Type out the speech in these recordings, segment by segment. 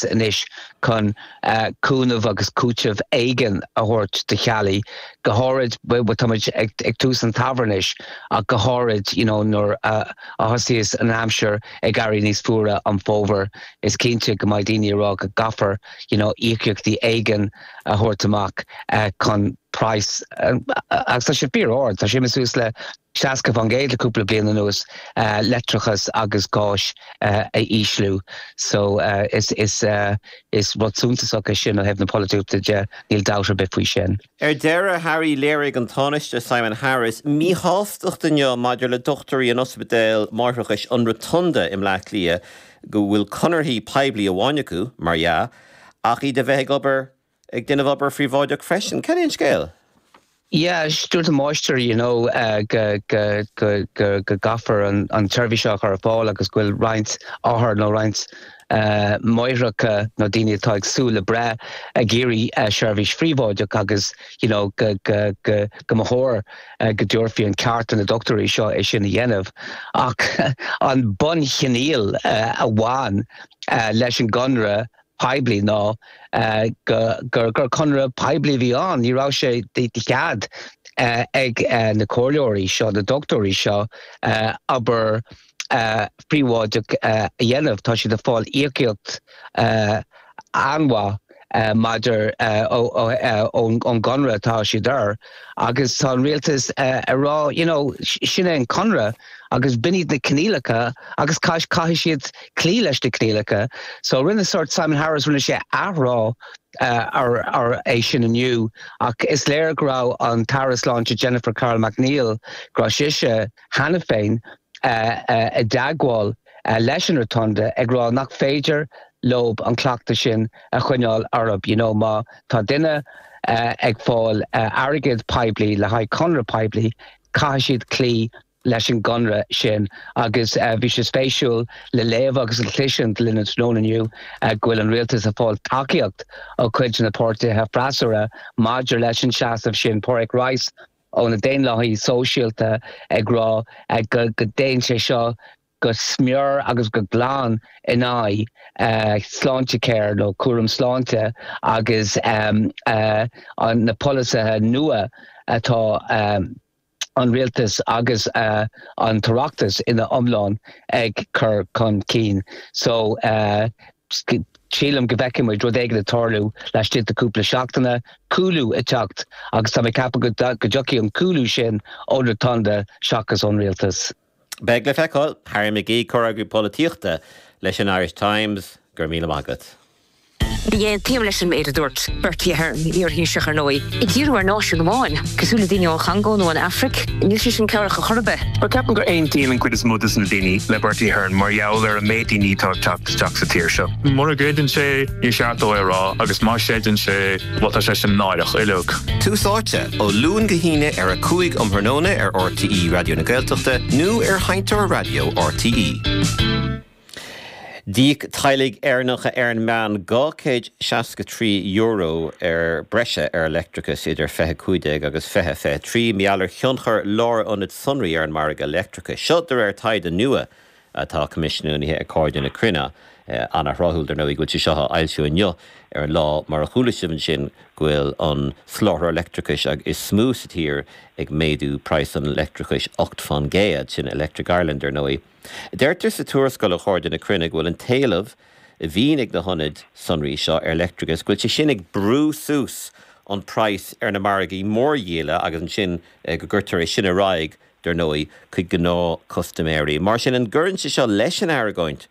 anois chun cúnamh agus cúiteamh éigin a thabhairt do theaghlaigh, go háirid, táimid ag tús an tsamhraidh anois, ach go háirid you know nuair a thosaíos an aimsir ag éirí níos fuaire an fómhar, is cinnte go mbeidh daoine ag rá go gcaithfear you know íocaíochtaí éigin a thabhairt amach chun praghas agus tá sé fíor ard, tá sé suas le. 60% le cúpla bliain anuas, leictreachas agus gás a ísliú. So is rud suntasach é sin ó thaobh na polaitíochta de, níl dabht ar bith faoi sin. Ar deireadh Harry, léirigh an Tánaiste Simon Harris míshástacht inniu maidir le dochtúirí in ospidéal máithreachais an Rotunda i mBleá Cliath go bhfuil conarthaí poiblí amháin acu, mar dhea, ach iad a bheith ag obair Ag déanamh obair phríobháideach freisin? Cad é an scéal? Yeah, dúirt an máistir you know go gcaithfear an tseirbhís seo a chur ar fáil agus go bhfuil roinnt othar nó roinnt máithreacha nó daoine atá ag súil le breith ag iarraidh seirbhís phríobháideach agus you know go mba chóir go dtabharfaí an ceart do na dochtúirí seo é sin a dhéanamh ach an bunchoinníoll a bhain leis an gconradh poiblí ná gur conradh poiblí a bhí ann. Ní raibh sé de chead ag na comhairleoirí seo, na dochtúirí seo, obair phríobháideach a dhéanamh. Tá siad ag fáil íocaíocht an-mhaith maidir ón gconradh atá siad air. Agus tá an rialtas ag rá you know sin é an conradh agus b'in iad na coinníollacha agus caithfidh siad cloí leis na coinníollacha. So rinne sórt Simon Harris rinne sé athrá ar é sin inniu ach is léir go raibh an tAire Sláinte Jennifer Carroll MacNeill go raibh sise cheana féin i dteagmháil leis an Rotunda ag rá nach féidir leo an cleachtadh sin a choinneáil orthu, you know má tá duine ag fáil airgead poiblí le haghaidh conradh poiblí caithfidh siad cloí leis an gconradh sin agus bhí sé spéisiúil le léamh agus le cloisint linn tráthnóna inniu go bhfuil an Rialtas ag fáil tacaíocht ó chuid de na páirtithe freasúra maidir leis an seasamh sin, Pádraig Rice. ó na daonlathaithe sóisialta ag rá go dtéann sé seo go smior agus go glan in aghaidh Sláintecare nó cúram sláinte agus na polasaithe nua atá an rialtas agus an tOireachtas ina iomlán ag cur chun cinn. Sílim go bhfeicfidh muid rud éigin ag tarlú laistigh de cúpla seachtain, cúlú ag teacht agus tá mé ag ceapadh go dtiocfaidh an cúlú sin ón Rotunda seachas ón Rialtas. Beidh le feiceáil. Harry McGee, Comhfhreagraí Polaitíochta leis an Irish Times, go raibh míle maith agat. Ní aontaím leis an méid a dúirt Bertie Ahern, iar-Thaoiseach, ar ndóigh, ag díriú ar náisiún amháin. cosúil le daoine ón Chongó nó an Afraic, níl sé sin cabhrach ar chor ar bith. Ceapaim go n-aontaíonn an chuid is mó de na daoine le Bertie Ahern mar gheall ar an méid daoine atá ag teacht isteach sa tír seo. Mura gcreideann sé, níor cheart dó é a rá agus má chreideann sé, bhuel, tá sé sin náireach uilig. Tús Áite, ó Luan go hAoine ar a 5 um thráthnóna ar RTÉ Raidió na Gaeltachta nó ar Sheinnteoir Raidió RTÉ. D'íoc teaghlaigh Éireannacha ar an meán €263 sa bhreis ar leictreachas idir 2015 agus 2023, mar gheall ar thionchar lárionad sonraí ar an margadh leictreachais. Seo de réir taighde nua atá coimisiúnaithe ag Cairde na Cruinne. An-thráthúil, dar ndóigh, go bhfuil sé seo á fhoilsiú inniu ar an lá mar a chuala sibh ansin go bhfuil an soláthraí leictreachais is mó sa tír ag méadú praghas an leictreachais 8 fán gcéad, sin Electric Ireland, ar ndóigh. Deirtear sa tuarascáil ó Chairde na Cruinne go bhfuil an t-éileamh a bhíonn ag na hionaid sonraí seo ar leictreachas, go bhfuil sé sin ag brú suas an praghas ar na margaí mórdhíola agus ansin go gcuirtear é sin ar aghaidh, dar ndóigh, chuig gnáthchustaiméirí. Mar sin, an gcuireann sé seo leis an argóint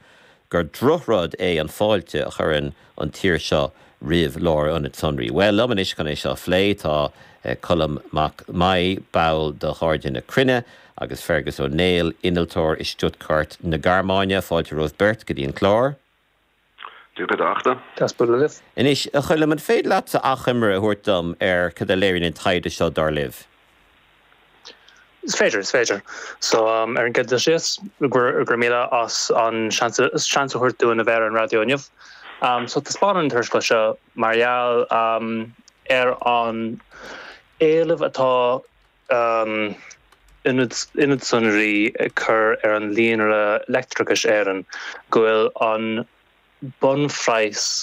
gur drochrud é an fáilte a chuireann an tír seo roimh lárionaid sonraí. Bhuel, liom anois chun é seo a phlé tá Colm Mac Meadhbh, ball de Chairde na Cruinne, agus Fergus Ó Néill, innealtóir i Stuttgart na Gearmáine. Fáilte romhaibh beirt go dtí an clár. Dia dhuit, a Fhachtna. Dia is Muire daoibh. Anois, a Choilm, an féidir leatsa achoimre a thabhairt dom ar cad a léiríonn an taighde seo, dar libh? Is féidir, is féidir. So, ar an gcéad dul síos, gura míle as an seans a thabhairt dúinn a bheith ar an raidió inniu. So, taispeánann an tuarascáil seo mar gheall ar an éileamh atá Ionad Sonraí ag cur ar an Líonra Leictreachais Éireann go bhfuil an bunphraghas,